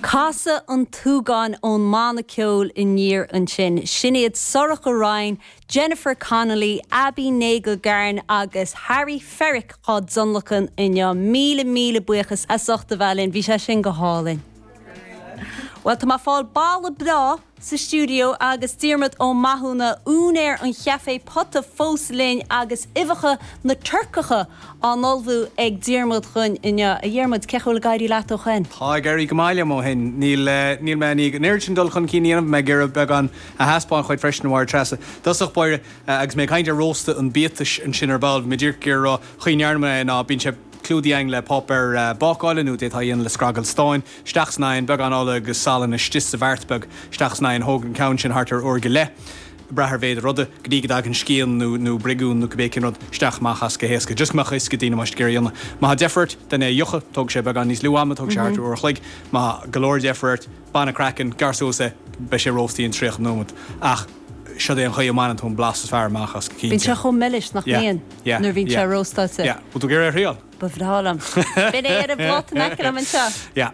Casadh an tSúgáin ón mbanna ceoil Aniar ansin. Sin iad Sorcha Ryan, Jennifer Connolly, Abbie Nagle-Garn agus Harry Ferrick á dtionlacan inniu. Míle míle buíochas as ucht a bheith linn. Bhí sé sin go hálainn. Bhuel, tá mé ag fáil boladh breá. sa stiúideo agus Diarmuid Ó Mathúna, úinéir an chaifé Pota fós linn agus uibheacha Turcacha á n-ullmhú ag Diarmuid dhúinn inniu. A Dhiarmuid, cén chaoi a bhfuil ag éirí leat ó shoin? Tá ag éirí go maith liom ó shoin. Níl, níl mé i ndiaidh an oiread sin dul chun cinn a dhéanamh. Mé ag iarraidh beagán a thaispeáint dhuit freisin a Mháire Treasa. Dtosach báire agus mé ag caint ar róstadh an biatais ansin ar ball. Mé díreach ag iarraidh a rá chaoi ndearna mé é ná bíonn sé clúdaithe a'inn le páipéar bácála nó d'fhéadfá é a dhéanamh le scragall stáin. isteach san oigheann, beagán ola agus salann istigh sa mbeart beag, isteach san oigheann, thóg an ceann sin thart ar uair go leith, brath ar mhéid an ruda, go dtí go dtagann scian nó nó briogún nó cibé cén rud isteach amach as go héasca, just go mbeadh a fhios ag daoine cén chaoi le a dhéanamh. Má tá deifir ort tá tú in ann é a fhiuchadh, tógfaidh sé beagán níos lú ama, tógfaidh sé thart ar uair a chloig. Má tá go leor deifre ort, bain an craiceann, gearr suas é, beidh sé rósta in 30 nóiméad. Ach siod é an chaoi a mbaineann tú an blas is fearr amach as go Bíonn cinnte. sé chomh milis nach mbíonn Yeah, yeah, nuair a bhíonn sé yeah, róstáilte. yeah. Bhfuil tú ag iarraidh é a thriáil? Ba bhreá liom. Beidh mé ar an bpláta in aice liom anseo. Yeah.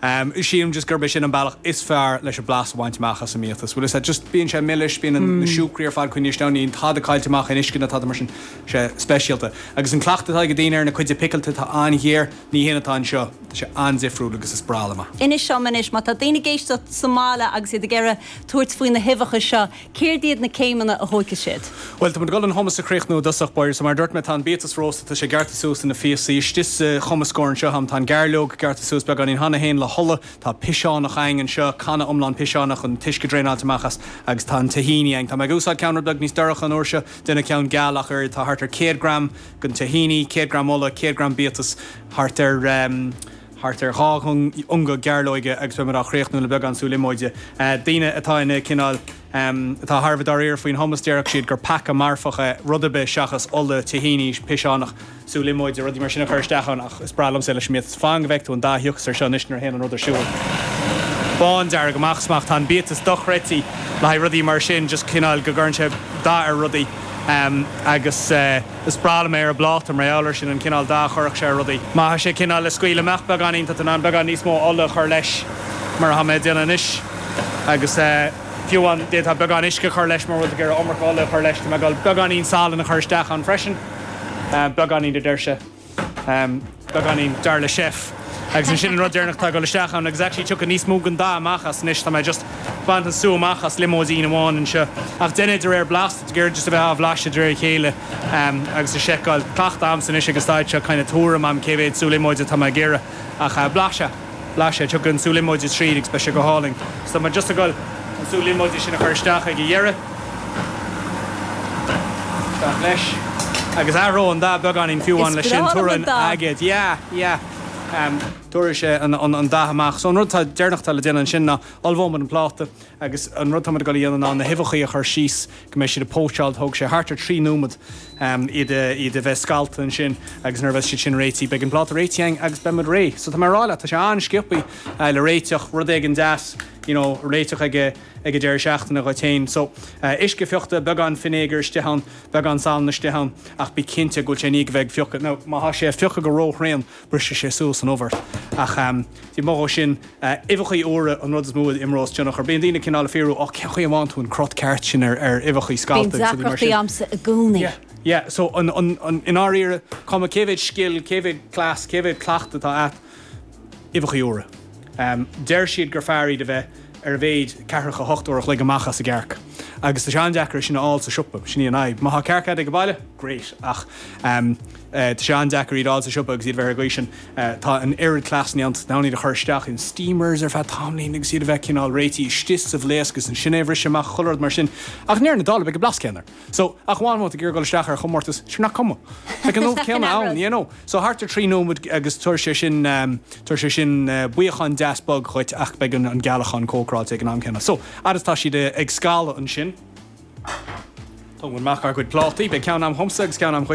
Sílim just gurb é sin an bealach is fearr leis an blas a bhaint amach as an mbiatas. Bhuel, is ea, just bíonn sé milis, bíonn na siúcraí ar fad coinnithe isteach, níl tada caillte amach in uisce ná tada mar sin. Sé speisialta. Agus an cleachtadh atá ag daoine ar an gcuid phicilte atá an-ghéar, ní hin atá anseo. Tá sé an-difriúil agus is breá liom é. Inis liom anois, má tá daoine ag éisteacht sa mbaile agus iad ag iarraidh tabhairt faoi na huibheacha seo, Céard iad na céimeanna a thóigfidh siad? Bhuel, tá muid ag dul an hummus a chríochnú i dtosach báire. So, mar a dúirt mé, tá an biatas rósta, tá sé gearrta suas ina phíosaí. Istigh sa gcumascóir anseo a'm, tá an gairleog gearrta suas beagáinín, cheana féin le hola. Tá piseánach a'inn anseo, canna iomlán piseánach, an t-uisce draenáilte amach as. Agus tá an tahini a'inn. Tá mé ag úsáid ceann rud beag níos dorcha an uair seo, déanfaidh ceann geal ach an oiread. Tá thart ar 100 gram den tahini, 100 gram ola, 100 gram biatas, thart ar, thart ar dhá ionga gairleoige agus beidh muid á chríochnú le beagán sú liomóide. Daoine atá ina, cineál atá thar a bheith dáiríre faoin hummus, déarfadh siad gur peaca marfach é rud ar bith seachas ola, tahini, piseánach, sú liomóide, rudaí mar sin a chur isteach ann ach is breá liomsa é leis an mbiatas. Fan go bhfeice tú an dath a thiocfas air seo anois nuair a théann an rud ar siúl. Bándearg amach is amach. Tá an biatas dochreidte le haghaidh rudaí mar sin, just cineál go gcuireann sé dath ar rudaí agus. Is breá liom é ar an bpláta mar gheall ar sin, an cineál dath a chuirfeadh sé ar rudaí. Má tá sé cineál le scaoileadh amach beagáinín, tá tú in ann beagán níos mó ola a chur leis mar atá mé ag déanamh anois agus fiú amháin d'fhéadfá beagán uisce a chur leis mura bhfuil tú ag iarraidh iomarca ola a chur leis, tá mé ag dul beagáinín salainn a chur isteach ann freisin, beagáinín a deir sé. beagáinín, dar le chef. Agus ansin an rud deireanach atá ag dul isteach ann, agus actually tiocfaidh níos mó den dath amach as anois, tá mé just bainte an sú amach as líomóidín amháin anseo. Ach déan é de réir blas, de réir just a bheith á bhlaiseadh de réir a chéile agus a seiceáil, tá cleachtadh agamsa anois ag an staid seo kind of tuairim agam cé mhéad sú líomóide atá mé ag iarraidh ach blaiseadh. Blais é. Tiocfaidh an sú líomóide tríd agus beidh sé go hálainn. So tá mé just ag dul an sú líomóide sin a chur isteach ag an deireadh. Isteach leis. Agus athróidh an dath beagáinín fiú amháin leis sin. Is breá liom an dath. Tabharfaidh an aigéad. Yeah, yeah. Tabharfaidh sé an dath amach. So an rud deireanach atá le déanamh ansin ná ullmhóimid an pláta. agus an rud atá muid ag dul a dhéanamh ná na huibheachaí a chur síos go mbeidh siad ag póitseáil, tógfaidh sé thart ar 3 nóiméad iad a bheith scallta ansin agus nuair a bheas siad sin réitithe beidh an pláta réitithe againn agus beidh muid réidh. So tá mé ag rá leat, tá sé an-sciobtha le réiteach, rud éigin deas you know le réiteach ag an deireadh seachtaine dhuit féin. So uisce fiuchta, beagán finéagair istigh ann, beagán salainn istigh ann ach bí cinnte go bhfuil sé i ndiaidh a bheith ag fiuchadh. Now má tá sé ag fiuchadh go ró-thréan, brisfidh sé suas an ubh ort. Ach den chuid is mó dhó sin, uibheachaí úra an rud is mó a imreos tionchar. Bíonn daoine ag cineál ag fiafraí, Ó, cén chaoi a bhfaigheann tú an cruth ceart sin ar uibheachaí scallta agus rudaí mar sin. Bíonn deacrachtaí agamsa i gcónaí. Yeah, yeah. So, an, an, an, i ndáiríre, cuma cé mhéad scil, cé mhéad cleas, cé mhéad cleachtadh atá a't, uibheachaí úra. Em, deir siad gur fearr iad a bheith ar a mhéid ceathracha a hocht uair a chloig amach as an gcearc. Agus tá sé an-deacair é sin a fháil sa siopa, sin í an fhadhb. Má thá cearc a't ag an baile, great, ach, em, Tá sé an-deacair iad a fháil sa siopa agus iad a bheith ar an gcaoi sin. Tá an oiread cleasanna ann, tá tú in ann iad a chur isteach in steamers ar feadh tamaillín agus iad a bheith cineál réitithe istigh sa bhlaosc agus ansin é a bhriseadh amach, chuile rud mar sin. Ach i ndeireadh na dála beidh an blas céanna air. So, ach amháin má tá tú ag iarraidh dul isteach ar chomórtas, sure nach cuma. Beidh an ubh céanna ann, you know. So, thart ar thrí nóiméad agus tabharfaidh sé sin, tabharfaidh sé sin buíocán deas bog dhuit ach beidh an gealacán cócaráilte ag an am céanna. So, fhad is atá siad ag scalladh ansin, tógfaidh muid amach ár gcuid plátaí, beidh ceann agam dhomsa agus ceann agam dhuit.